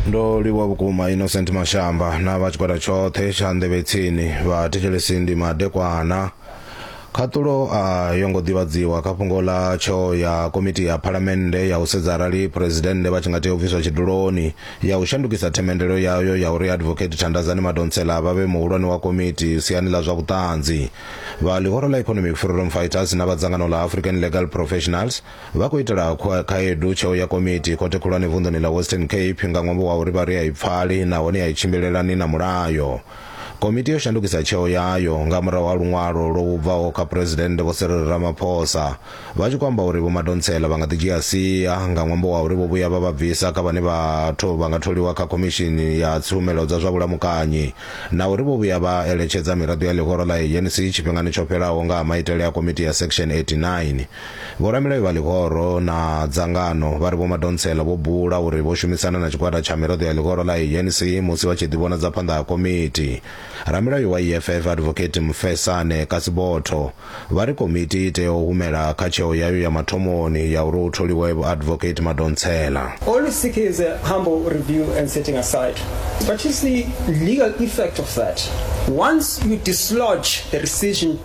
ndo livhuwa vhukuma innocent mashamba na vha tshigwada tshoṱhe tsha nḓevhetsini vha thetshelesi ndi madekwana khaṱulo a yo ngo ḓivhadziwa kha fhungo ḽa tsho ya komiti ya phalamennde ya u sedza arali phuresidennde vha tshi nga tea u bviswa tshiduloni ya u shandukisa themendelo yayo ya uri advocate thandazani madonsela vha vhe muhulwane wa komiti siani ḽa zwa vhuṱanzi vha ḽihoro ḽa economic freedom fighters na vha dzangano ḽa african legal professionals Vha khou itela khaedu tsheo ya komiti khothe khulwane vunḓuni ḽa Western Cape nga ṅwambo wa uri vha ri a i pfali nahone a i tshimbilelani na mulayo. Komiti yo shandukisa tsheo yayo nga murahu ha luṅwalo lwo bvaho kha Phresidennde Vho Cyril Ramaphosa vha tshi khou amba uri Vho Madonsela vha nga ḓi dzhia sia nga ṅwambo wa uri vho vhuya vha vha bvisa kha vhane vha nga tholiwa kha Khomishini ya Tshumelo dza zwa Vhulamukanyi na uri vho vhuya vha eletshedza miraḓo ya ḽihoro ḽa ANC tshifhingani tsho fhelaho nga ha maitele a Komiti ya Section 89. Vhoramilayo vha ḽihoro na dzangano vha ri Vho Madonsela vho bula uri vho shumisana na tshigwada tsha miraḓo ya ḽihoro ḽa ANC musi vha tshi ḓivhonadza phanḓa ha komiti. Ramilayo wa EFF Advocate Mfesane Kasibotho vha ri komiti i tea u humela kha tsheo yayo ya mathomoni ya uri hu tholiwe Vho Advocate Madonsela. All we seek is a humble review and setting aside but is the legal effect of that once you dislodge the rescission.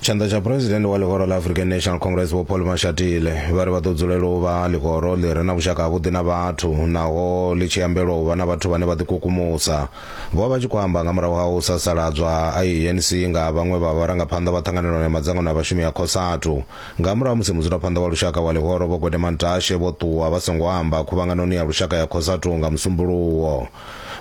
tshanḓa tsha phuresidennde wa ḽihoro ḽa african national congress vho paul mashatile vha ri vha ḓo dzulela u vha ḽihoro ḽi re na vhushaka havhuḓi na vhathu naho ḽi tshi ambelwa u vha na vhathu vhane vha ḓikukumusa vho vha vha tshi khou amba nga murahu ha u sasaladzwa a anc nga vhaṅwe vha vharangaphanḓa vha ṱhanganelano ya madzangano a vhashumi ya cosatu nga murahu musi mudzulaphanḓa wa lushaka wa ḽihoro vho gwedemantashe vho ṱuwa vha songo amba khuvhanganoni ya lushaka ya cosatu nga musumbuluwo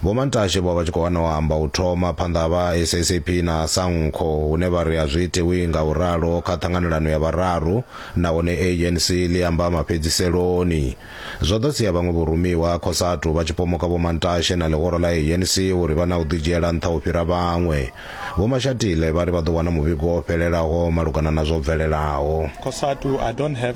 Vho Mantashe vho vha tshi khou hana u amba u thoma phanḓa ha vha SACP na SANCO hune vha ri a zwi itiwi nga u ralo kha ṱhanganelano ya vhararu nahone ANC ḽi amba mafhedziseloni. Zwo ḓo sia vhaṅwe vhorumiwa Cosatu vha tshi pomoka Vho Mantashe na ḽihoro ḽa ANC uri vha na u ḓidzhiela nṱha u fhira vhaṅwe. Vho Mashatile vha ri vha ḓo wana muvhigo wo fhelelaho malugana na zwo bvelelaho. Cosatu, I don't have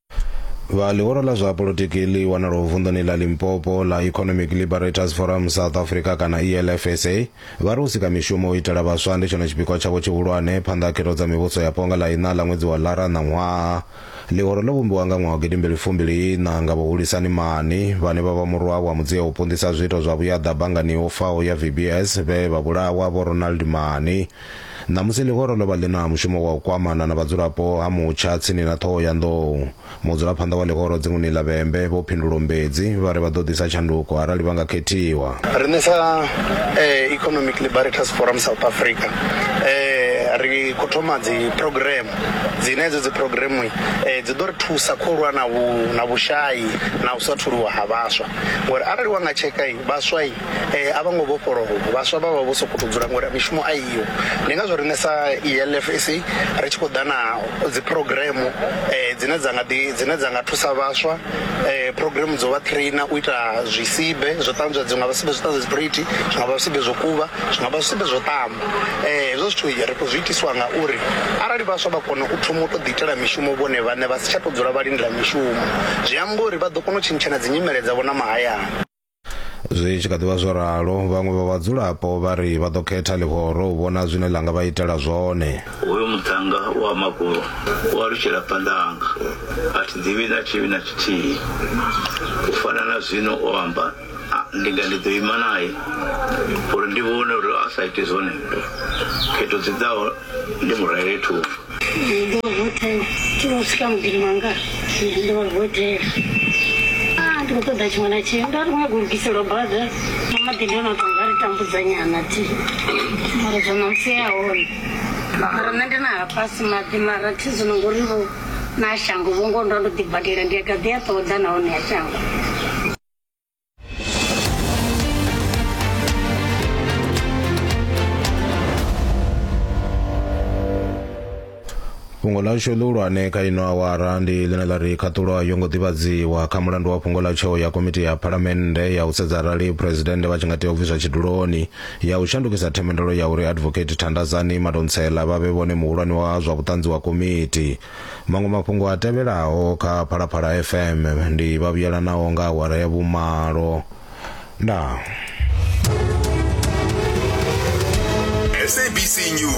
vha ḽihoro ḽa zwa polotiki ḽi wanalaho vunḓuni ḽa limpopo ḽa economic liberators forum south africa kana elfsa vha ri u sika mishumo u itela vhaswa ndi tshone tshipikwa tshavho tshihulwane phanḓa ha khetho dza mivhuso ya ponga ḽa iṋa ḽa ṅwedzi wa lara ṋaṅwaha ḽihoro ḽo vhumbiwa nga ṅwaha wa gidimbili fumbili iṋa nga vhahulisani mani vhane vha vha murwa wa mudzia u punḓisa zwiito zwa vhuyaḓa banngani yo faho ya vbs vhe vha vhulawa vho ronald mani Ṋamusi ḽihoro ḽo vha ḽi na mushumo wa u kwamana na vhadzulapo ha Mutsha tsini na ṱhoho ya nḓou. Mudzulaphanḓa wa ḽihoro dzinguni ḽa Vhembe, Vho Phindulo Mbedzi, vha ri vha ḓo ḓisa tshanduko arali vha nga khethiwa. Riṋe sa Economic Liberators Forum South Africa ri khou thoma dzi phurogireme dzine hedzo dzi phurogireme dzi ḓo ri thusa khou lwa na vhu na vhushai na u sa tholiwa ha vhaswa ngori arali wa nga tsheka vhaswa eh a vho ngo vhofholowa vhaswa vha vha vho sokou tou dzula ngori mishumo a iyo ndi ngazwo riṋe sa ELFC ri tshi khou ḓa na dzi program eh dzine dza nga ḓi dzine dza nga thusa vhaswa eh program dzo vha trainer u ita zwisibe zwo ṱanzwa dzi nga vha sibe zwo ṱanzwa dzi plate zwi nga vha zwisibe zwo kuvha zwi nga vha zwisibe zwo ṱamba eh hezwo zwithu ri khou zwi itiswa nga uri arali vhaswa vha kona u thoma u tou ḓi itela mishumo vhone vhaṋe vha si tsha tou dzula vha lindela mishumo zwi amba uri vha ḓo kona u tshintshana dzi nyimele dzavho na mahayani. zwi tshi kha ḓivha zwo ralo vhaṅwe vha vhadzulapo vha ri vha ḓo khetha ḽihoro u vhona zwine ḽa nga vha itela zwone hoyo muṱhannga wa makulo u alutshela phanḓanga a thi ḓivhi na tshivhi na tshithihi u fana na zwino o amba ndi nga ndi ḓo ima naye uri ndi vhone uri a sa ite zwone khetho dzi ḓaho ndi mu rwele thungo ndo vha vho tea tshi vho swika muḓini wanga ndo vha vho tea a ndi khou ṱoḓa tshiṅwe na tshiṅwe nda ri khou nyago lugiselwa bada na maḓi ndi ono to nga ri tambudza nyana ti mara zwa namusi ya hone mara nṋe ndi na hafhasi maḓi mara thi zwino ngori vho na shango vho ngo ndo ndo ḓi badela ndi a gaḓi a ṱoḓa nahone ya shango fhungo lashu ḽihulwane kha ino awara ndi ḽine ḽa ri khaṱulo a yo ngo ḓivhadziwa kha mulandu wa fhungo ḽa tsheo ya komiti ya phalamennde ya u sedza arali phuresidennde vha tshi nga tea u bviswa tshiduloni ya u shandukisa themendelo ya uri advocate thandazani madontsela vha vhe vhone muhulwane wa zwa vhuṱanzi wa komiti Maṅwe mafhungo a tevhelaho kha Phalaphala FM ndi vha vhuyelanaho nga awara ya vhumalo. Ndaa. SABC News.